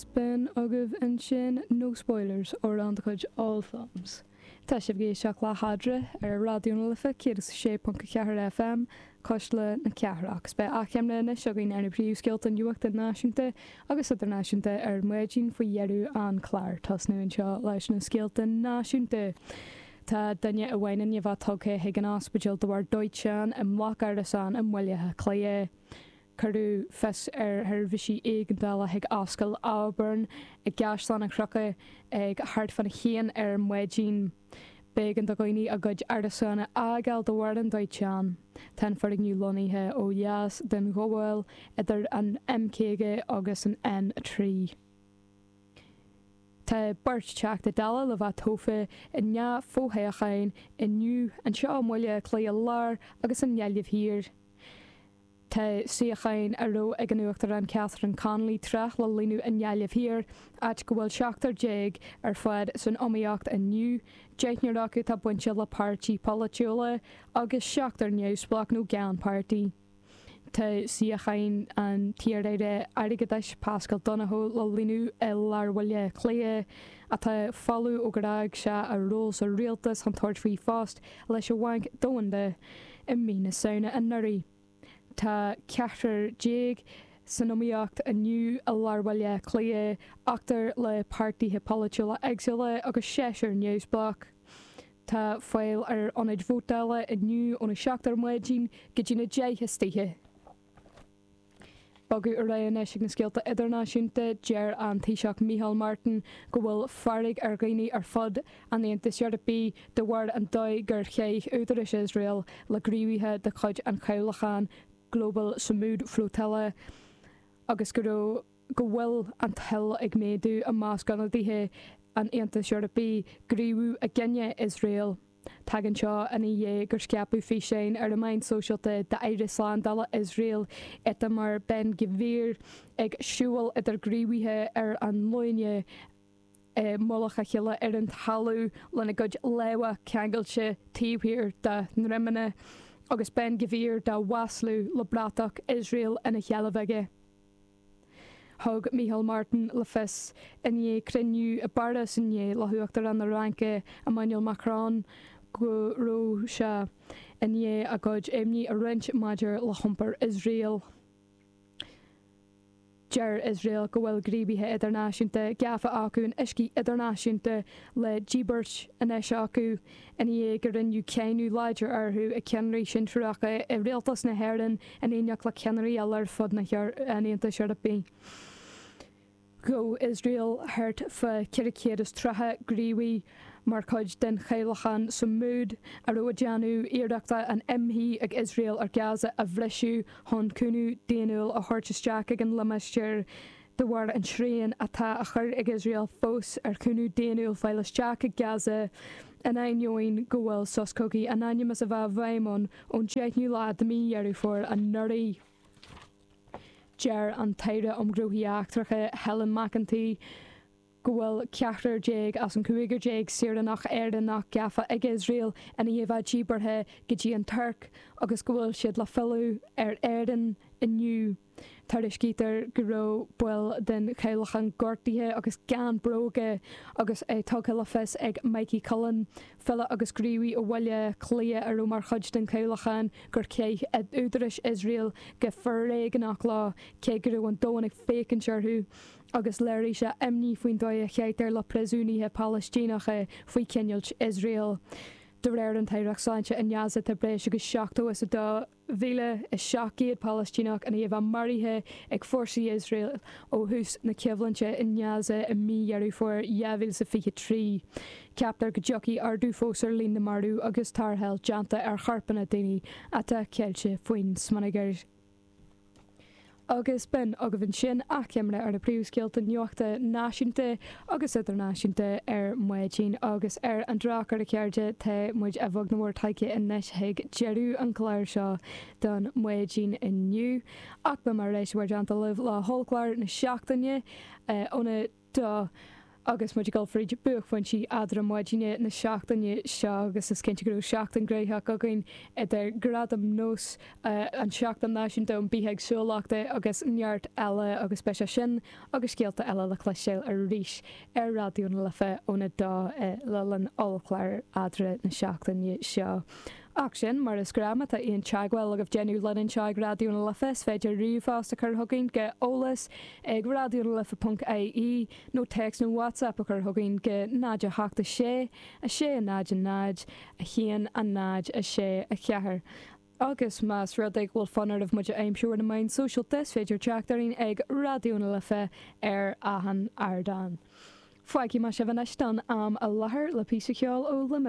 Spin agaibh ansin, no spoilers, ó Randgood All Films. Tá sibh ag éisteacht le hEadra ar Raidió na Life 106.4 FM, Cuisle na Cathrach. 'S beidh achoimre anois againn ar na príomhscéalta nuachta náisiúnta agus idirnáisiúnta ar maidin faoi dheireadh an chláir. Tosnú anseo leis na scéalta náisiúnta. Tá duine amháin i ndiaidh a bheith tugtha chuig an ospidéal de bharr dóiteán i mbloc árasán i mBaile Átha Cliath. Cuireadh fios ar sheirbhísí éigeandála chuig Ascaill Auburn i gCaisleán Cnucha ag thart fána haon ar maidin. B'éigean do dhaoine a gcuid árasán a fhágáil de bharr an dóiteáin. Tá an foirgneamh lonnaithe ó dheas den ghabháil idir an M50 agus an N3. Tá beirt Teachta Dála le bheith tofa in dhá fhothoghchán inniu, anseo i mBaile Átha Cliath Láir agus i nGaillimh Thiar. Tá suíochán a raibh ag an Uachtarán Catherine Connolly tráth le líonadh i nGaillimh Thiar, áit go bhfuil seachtar déag ar fad san iomaíocht inniu, deichniúr acu atá bainte le páirtí polaitiúla agus seachtar neamhspleách nó gan páirtí. Tá suíochán an t-iarAire Airgeadais Paschal Donohoe le líonadh i lár Bhaile Átha Cliath, atá folamh ó d'fhág sé a ról sa rialtas chun tabhairt faoi phost leis an Bhanc Domhanda. i mí na Samhna anuraidh. Tá ceathrar déag san iomaíocht inniu i lár Bhaile Átha Cliath, ochtar le páirtithe polaitiúla éagsúla agus seisear neamhspleách. Tá fáil ar ionaid vótála inniu óna seacht ar maidin go dtína deich istoíche. Bogadh ar aghaidh anois ag na scéalta idirnáisiúnta. Deir an Taoiseach Micheál Martin go bhfuil fearg ar dhaoine ar fud an Aontais Eorpaigh de bharr an dóigh gur chaith údarais Iosrael le gníomhaithe de chuid an chabhlacháin Global Sumud Flotilla agus go raibh go bhfuil an toil ag méadú i measc ionadaithe an Aontais Eorpaigh gníomhú i gcoinne Iosrael. Tagann seo ina dhiaidh gur scaipeadh físeáin ar na meáin sóisialta d'aire slándála Iosrael, Itamar Ben Gvir, ag siúl idir gníomhaithe ar a nglúine i mullach a chéile ar an talamh lena gcuid lámha ceangailte taobh thiar dá ndroimeanna agus Ben Gvir dá mhaslú le bratach Iosrael ina sheilbh aige. Thug Micheál Martin le fios i ndiaidh cruinniú i bPáras inné le hUachtarán na Fraince Emmanuel Macron go raibh sé i ndiaidh a gcuid imní a roinnt maidir le hiompar Iosrael. Deir Iosrael go bhfuil gníomhaithe idirnáisiúnta gafa acu in uiscí idirnáisiúnta le díbirt anois acu. ina dhiaidh go rinneadh cáineadh láidir orthu ag ceannairí sinsearacha i rialtas na hÉireann in éineacht le ceannairí eile ar fud an Aontais Eorpaigh. Ghabh Iosrael thart fá 430 gníomhaí mar chuid den chabhlachán Sumud a raibh ag déanamh iarrachta an imshuí ag Iosrael ar Gaza a bhriseadh chun cúnamh daonnúil a thabhairt isteach ag an limistéar de bharr an tsriain atá á chur ag Iosrael fós ar chúnamh daonnúil fáil isteach i Gaza, in ainneoin go bhfuil sos cogaidh in ainm is a bheith i bhfeidhm ann ón 10ú lá de mí Dheireadh Fómhair anuraidh. Deir an tAire um Ghnóthaí Eachtracha, Helen McEntee, go bhfuil ceathrar déag as an gcúigear déag saoránach Éireannach gafa ag Iosrael ina dhiaidh a bheith díbeartha go dtí an Tuirc agus go bhfuil siad le filleadh ar Éirinn inniu. Tuairiscítear go raibh baill den chabhlachán gortaithe agus gan bróga agus é tugtha le fios ag Mikey Cullen, file agus gníomhaí ó Bhaile Átha Cliath a raibh mar chuid den chabhlachán, gur chaith údaráis Iosrael go foréigneach leo cé go raibh an domhan ag féachaint orthu agus léirigh sé imní faoin dóigh a chaitear le príosúnaithe Palaistíneacha faoi choinneáilt Iosrael. De réir an tAireacht Sláinte i nGaza tá breis agus 72 mhíle is 700 Palaistíneach ina dhiaidh a bheith maraithe ag fórsaí Iosrael ó thús na coimhlinte i nGaza i mí Dheireadh Fómhair 2023. Ceaptar go dtiocfaidh ardú fós ar líon na marbh agus tarrtháil déanta ar chorpanna daoine atá ceilte faoin smionagar. Agus b'in agaibh ansin achoimre ar na príomhscéalta nuachta náisiúnta agus idirnáisiúnta ar maidin. Agus ar an drochuair, a chairde, tá muid a bheag nó a mhór tagtha anois chuig deireadh an chláir seo don maidin inniu. Ach beimid ar ais i bhur dteannta libh le hollchlár na seachtaine óna. dó, agus muid ag dul fríd buaicphointí eadra maidine na seachtaine seo agus is cinnte go raibh seachtain gnaitheach againn idir Gradaim NÓS, an tSeachtain Náisiúnta um Bithéagsúlachta agus neart eile agus beidh sé sin agus scéalta eile le cloisteáil arís ar Raidió na Life óna 2 le linn ollchlár eadra na seachtaine seo. Ach sin mar is gnáth má tá aon teagmháil agaibh déanamh linn anseo ag Raidió na Life is féidir ríomhphost a chur chugainn go eolas ag raidionalife ponc ie nó téacs nó WhatsApp a chur chugainn go 0 8 6 6 0 0 1 0 6 4 agus más rud é go bhfuil fonn oraibh muid a aimsiú ar na meáin sóisialta is féidir teacht orainn ag Raidió na Life ar achan ardán. Fágfaidh mé sibh anois don am i láthair le píosa ceoil ó Luimneach.